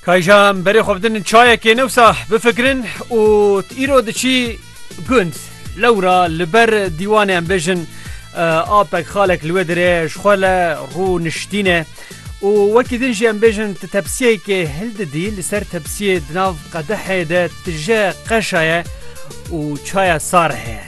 Kayjan berê xwe bidin çayekê newsa bifikirin û îro diçî gund lewra li ber dîwanê em bêjin apek xalek li wê dirê ji xwe le rû niştîne û wekî din jî em bêjin ti tepsiyekê hil didî li ser tepsiyê di nav qedehê de tije qeşaye û çaya sar heye.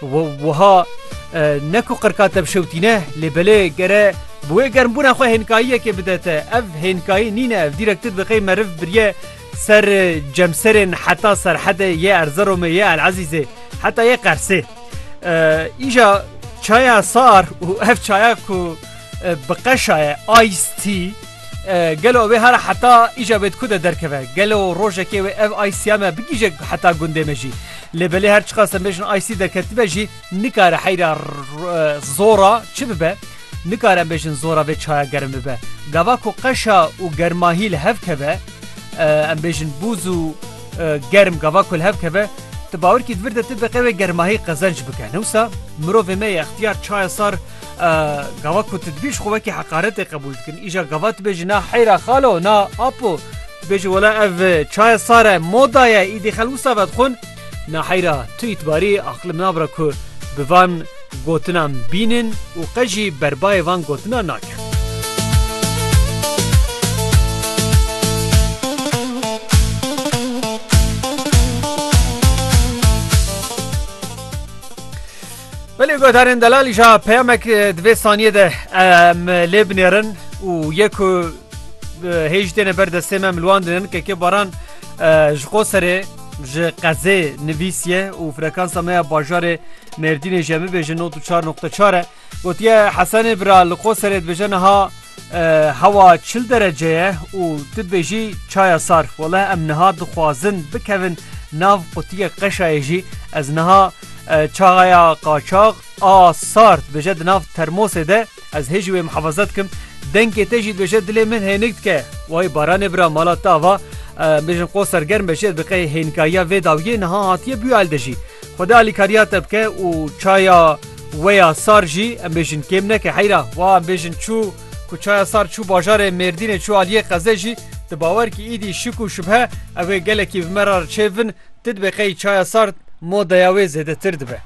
Wiha ne ku qirka te bişewtîne lê belê gere bi wê germbûna xwe hênkayiyekê bide te. Ev hênkayî nîne ev dîrek tu diqê meriv biriye ser cemserên heta serhedê yê Erzeromê yê El Ezîzê heta yê Qersê. Îja çaya sar û ev çaya ku bi qeşaye ice tea Gelo wê hara heta îja wê di ku de derkeve? Gelo rojekê wê ev IC'a me bigihîje heta gundê me jî? Lê belê her çiqas em bêjin IC derketibe jî nikare heyra zora çi bibe? Nikare em bêjin zora vê çaya germ bibe. Gava ku qeşa û germahî li hev keve em bêjin bûz û germ gava ku li hev keve ti bawer kî di vir de ti biqe wê germahî qezenc bike. Newsa mirovê me yê extiyar çaya sar Gava ku tu dibî ji xwe wekî heqaretê qebûl dikin. Îja gava tu bêjî na heyra xalo na apo bêjî wela ev e, çaye sar e moda ye îdî xel wisa vedixwin na heyra tu îtibarî aqlim nabira ku bi van gotinan bînin û qe jî berbayê van gotinan nakin. Belê guhdarên delal îja peyamek di vê saniyê de em lê binêrin û yê ku hêj têne ber destê me milwandin kekê baran ji qo serê ji qezê nivîsiye û frekansa me ya bajarê mêrdînê jemibêje not û çar noqte çar e gotiye hesenê bira li qo serê dibêje niha Hewa çil derece ye û tu dibêjî çaya sar. Wele em niha dixwazin bikevin nav qutiyê qeşayê jî. Ez niha çaya qaçax a sar dibêje di nav termosê de. Ez hê jî wê mihefeze dikim. Dengê te jî dibêje dilê min hênik dike. Way baranê bira mala te ava bêjin qo sergerm be jê diqe hênikayiya vê dawiyê niha hatiye bûye elde jî. Xwedê alîkariya te bike û çaya Weya sar jî em bêjin kêm neke heyra wa em bêjin çû ku çaya sar çû bajarê Mêrdînê çû aliyê qezê jî di bawer kî îdî şik û şubhe ew ê gelekî vi me ra çêvin ti dibe qey çaya sar modeya wê zêdetir dibe.